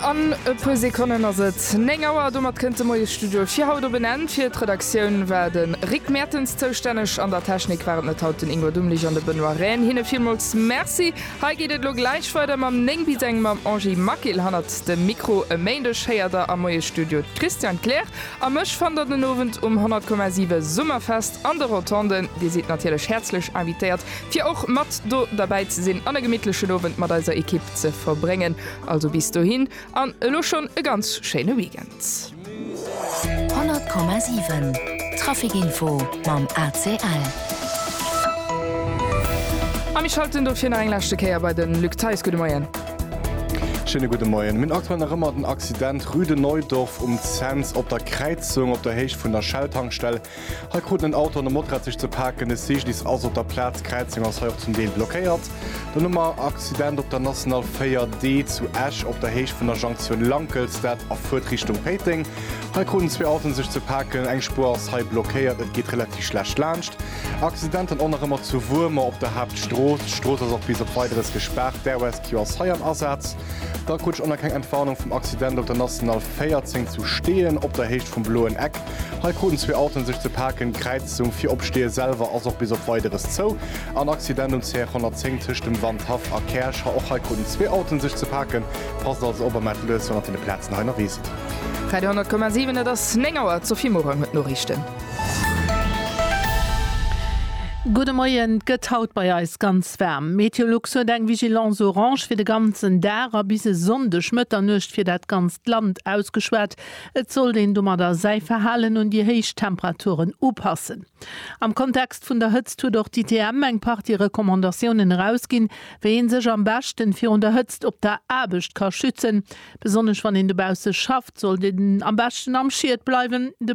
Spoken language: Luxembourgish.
An e puer Sekonnen ass et 9 Auer. Domat kënnt de Moiesstudio fir haut op en Enn. Fir d'Redaktioun war de Rick Mertens zoustänneg. An der Technik waren et haut den Ingwer Dummlich an de Benoît Rehn. Hinne villmools Merci. Hei geet et elo gläich weider mam 9 bis eng mam Angie Maquil hannert dem Mikro. E Méindeg héiert der am Moiesstudio d'Christiane Kleer a mech. Fannt der den Owend um 100,7 Summerfest an de Rotonden. Dir sidd natierlech häerzlech invitéiert, fir och mat do derbäi ze sinn an e gemittlechen Owend mat eiser Ekipp ze verbréngen. Also bis dohin an elo schonn e ganz schéine Weekend. 100,7 Traficinfo mam ACL. A mir schalten dofir nach eng leschte Kéier bei de Luc Theis. Gudde Moien. Schéine gudde Moien. Mir hunn aktuell nach ëmmer den Accident Rue de Neudorf um Cents op der Kräizung op der Héicht vun der Shell-Tankstell. Hei kruten en Auto an e Motrad sech ze paken. E Cyclist ass op der Plaz, d'Kräizung ass hei och zum Deel blockéiert. Dann hu mer Accident op der National 4D zu Esch op der Héicht vun der Junction Lankelstad a Furt Richtung Péiteng. Hei kruten zwee Autoen sech ze paken, eng Spuer ass hei blockéiert, et geet relativ schlecht laanscht. Accident dann och nach ëmmer zu Wuermer op der Haaptstrooss, d'Strooss ass och bis op Weideres gespaart, d'Air Rescue ass hei am Asaz. Da Kutsch ënner keng Entwarnung vum Accident op der National 14 zu Steeën, op der Héicht vum Bloen Eck. Hei kruten zwee Autoen sech ze paken. D'Kräizung fir op Steeë selwer ass och bis op Weideres zou. En Accident um CR 110 tëscht dem Wandhaff a Käerch. Och hei kruten zwee Autoen sech ze paken. Passt also op a mellt lues wann der vun de Plazen hei nerwees sidd. Radio 10,7 Et ass 9 Auer, d'Sophie Morang huet d'Noriichten. Gudde Moien, Et gëtt haut bei eis ganz waarm. Meteolux huet eng Vigilance orange fir de ganzen Dag a bis e Sonndeg Mëtternuecht fir dat ganzt Land ausgeschwat. Et sollt een domadder säi Verhalen un déi héich Temperaturen upassen. Am Kontext vun der Hëtzt huet och d'ITM eng Partie Recommandatiounen erausginn, wéi ee sech am beschten virun der Hëtzt op der Aarbecht ka schützen. Besonnesch wann een dobausse schafft, sollt een am beschten am Schied bleiwen. De.